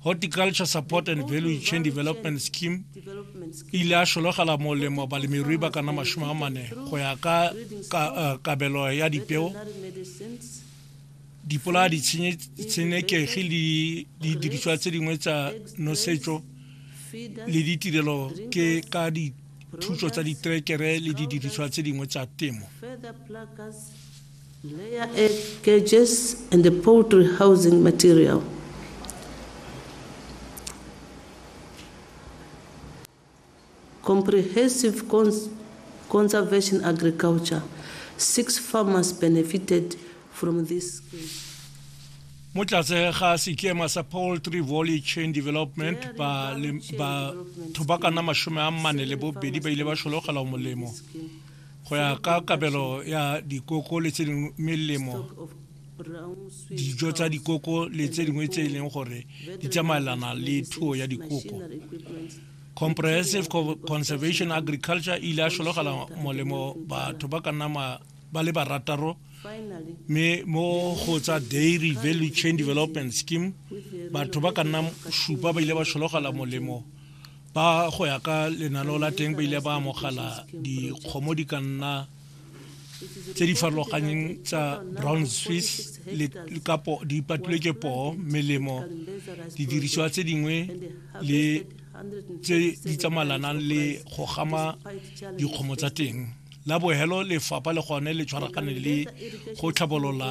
horticulture support and value chain development scheme e ile a šologela molemo balemirui ba kana masome a mane go ya ka eh, kabelo ya dipeo dipolaya ditshenekegi le didiriswa tse dingwe tsa nosetso le ditirelo ke ka dithuso tsa diterekere le didiriswa tse dingwe tsa temo Layer egg cages and the poultry housing material. Comprehensive cons conservation agriculture. Six farmers benefited from this scheme. mo tlatse ga sekema sa poultry volley chain development batho ba kana masome a mane le bobedi ba ile ba šologelwa molemo Go ya ka kabelo ya dikoko le tse dingwe melemo dijo tsa dikoko le tse dingwe tse e leng gore di tsamaelana le thuo ya dikoko comprehensive conservation agriculture e ile a šologela molemo batho ba ka nna ba le barataro mme mo go tsa dairy value chain development scheme batho ba ka nna šupa ba ile ba šologela molemo ba go ya ka lenaneo la teng ba ile ba amogela dikgomo di ka nna tse di farologanyeng tsa brown swiss le kapo di patilwe ke poo melemo didirisiwa tse dingwe le tse di tsamalanang le go gama dikgomo tsa teng la bohelo lefapha le gone le tshwaragane le go tlhabolola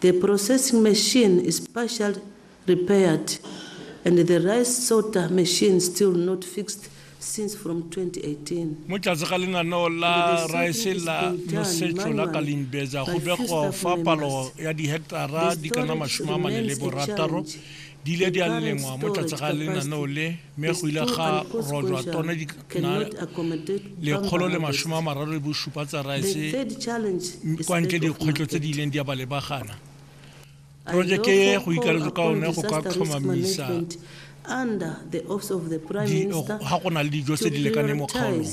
The processing machine is partially repaired and the rice sorter machine still not fixed since from 2018. Mo tlase ga lenaneo la rice la nosetso la Kalimbeza go begwa fa palo ya diheketara di ka nna masome a mane le borataro di ile di a lengwa mo tlase ga lenaneo le mme go ile ga rojwa tona di na lekgolo le masome a mararo le bosupa tsa rice kwa ntle dikgwetlho tse di ileng di a ba lebagana projeke e go ikaletswe ka one go ka tlhomamisa ga go na le dijo tse di lekaneng mo kgaolong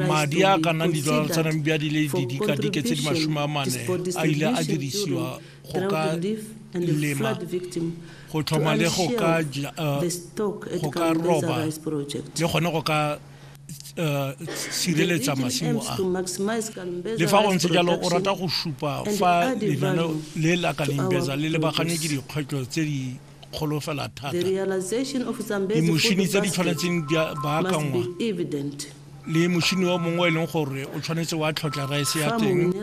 Madi a ka nnang didolara tsa Namibia di le didikadike tse di masome a mane a ile a dirisiwa go ka lema go tlhoma le go ka go ka roba le gone go ka sireletsa masimo a le fa go ntse jalo o rata go supa fa lenaneo le la kalimbeza le lebagane ke dikgwetlho tse di kgolo fela thata. Dimošini tse di tshwanetseng di baakanngwa le mošini o mongwe o e leng gore o tshwanetse wa tlhotlha raese ya teng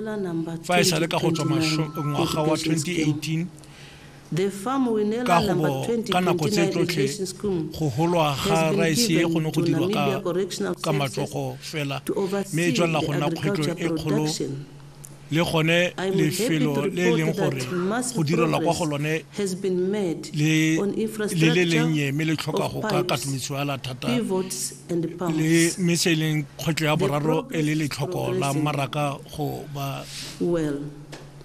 fa e sa le ka go tswa ngwaga wa 2018 ka go bo ka nako tse tsotlhe go holwa ga raese e go ne go dirwa ka matsogo fela mme e tswelela go nna kgwetlho e kgolo le gone lefelo le e leng gore go direlwa kwa go lone le le lennye mme le tlhoka go ka katometswala thata le mme se e leng kgwetlho ya boraro e le letlhoko la mmaraka go ba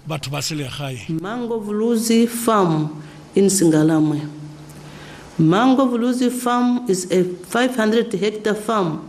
batho ba selegae mango vuluzi farm in singalamwe mango vuluzi farm is a 500 hectare farm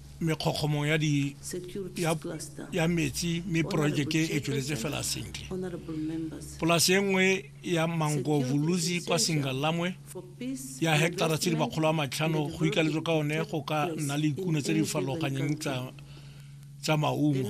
mekgokgomo ya di ya, ya metsi mme porojeke e tsweletse fela sentle polase e nngwe ya mangovuluzi kwa singalamwe ya heketara tse di makgolo a matlhano go ikaletswe ka one go ka nna le ikuno tse di farologanyeng tsa tsa maungo